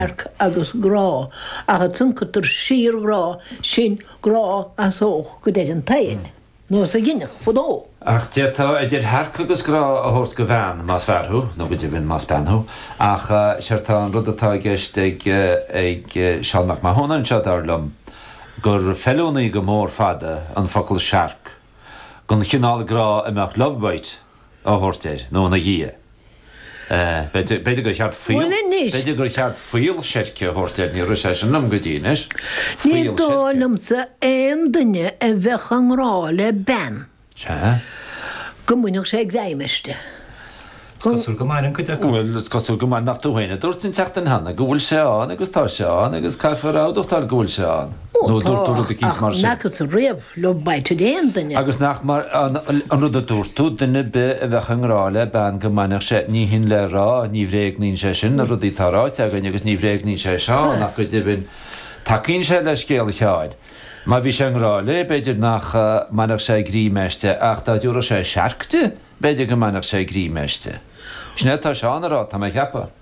radharc agus grá ach a chuncatar síorghrá sin, grá a shásódh go deimhin toil nó is a ghinfeadh fadó. Ach d'fhéadfá idir shearc agus grá a thabhairt do bhean, más fear thú, nó go deimhin más bean thú. Ach séard tá an rud atá i gceist ag Seán Mac Mathúna anseo, dar liom, gur feiliúnaí go mór fada an focal searc don chineál grá a mbeadh lovebite, a thabhairt air nó ina dhiaidh. B'fhéidir gur cheart fuíoll, b'fhéidir gur cheart fuíoll seirce a thabhairt air, níor rith sé sin liom go dtí anois, fuíoll seirce. Ní dóigh liomsa aon duine a bheadh i ngrá le bean go mbainfeadh sé greim aisti. Is cosúil go mbaineann cuid acu. Bhuel, is cosúil go mbaineann nach tú féin a dúirt an tseachtain cheana go bhfuil sé ann agus tá sé ann agus caithfear a admhachtáil go bhfuil sé ann. Nó dúirt tú rud eicínt mar sin. Ó, tá ach nach as a riocht. Love bite ar aon duine. Agus nach mar an rud a dúirt tú, duine 'bith a bheadh i ngrá le bean go mbainfeadh sé, ní hin le rá, ní bhréagnaíonn sé sin na rudaí atá ráite againn agus ní bhréagnaíonn sé Seán ach go deimhin tacaíonn sé le scéal Sheáin. Má bhí sé i ngrá léi, b'fhéidir nach mbainfeadh sé greim aisti ach dá dtabharfadh sé searc di, b'fhéidir go mbainfeadh sé greim aisti. Sin é atá Seán a rá, tá mé a cheapadh.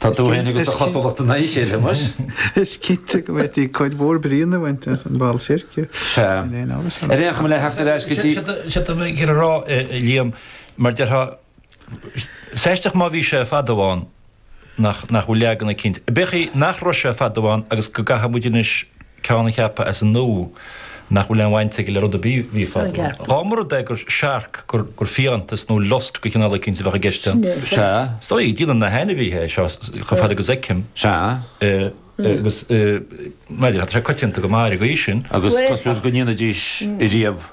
Tá tú féin agus do chosúlacht in aghaidh a chéile, muis? Is cinnte go bhféadfaí cuid mhór bríonna a bhaint as an bhfuíoll seirce. Sea. Ar aon chuma, le theacht ar ais go dtí. Is é atá mé ag rá, a Liam, mar déarfá, is aisteach má bhí sé fadó ann nach bhfuil leagan eicínt, b'fhéidir nach raibh sé fadó ann agus go gcaithfidh muid anois, ceann a cheapadh as an nua nach bhfuil aon bhaint aige le rud ar bith a bhí fadó. Dhá mba rud é gur searc, gur fiántas nó lust de chineál eicínt a bheadh i gceist ann, sea, is dóigh, déanann na hainmhithe é seo chomh fada agus a fheicim, sea, agus, bhuel, tá sé coitianta go maith ar an gcaoi sin. Agus cosúil go ndéanaidís riamh.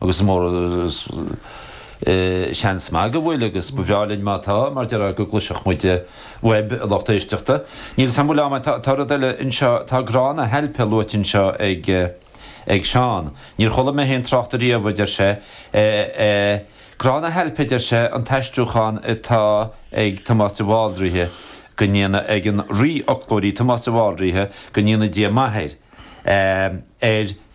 agus mar sin seans maith go bhfuil, agus ba bhreá linn má tá, mar déarfá, go gcloisfeadh muid uaibh, a lucht éisteachta. Níl a fhios agam, bhuel. Tá rud eile anseo, tá grá na hailpe luaite anseo ag Seán. Níor chuala mé féin trácht air riamh, a deir sé. Grá na hailpe, a deir sé, an t-aistriúchán atá ag Tomás de Bhaldraithe go ndéana, ag an rí-fhoclóirí Tomás de Bhaldraithe go ndéana Dia maith air, ar.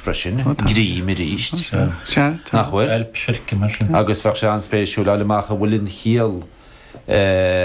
freisin, greim arís, nach bhfuil? Agus bheadh sé an-spéisiúil a fháil amach an bhfuil an chiall.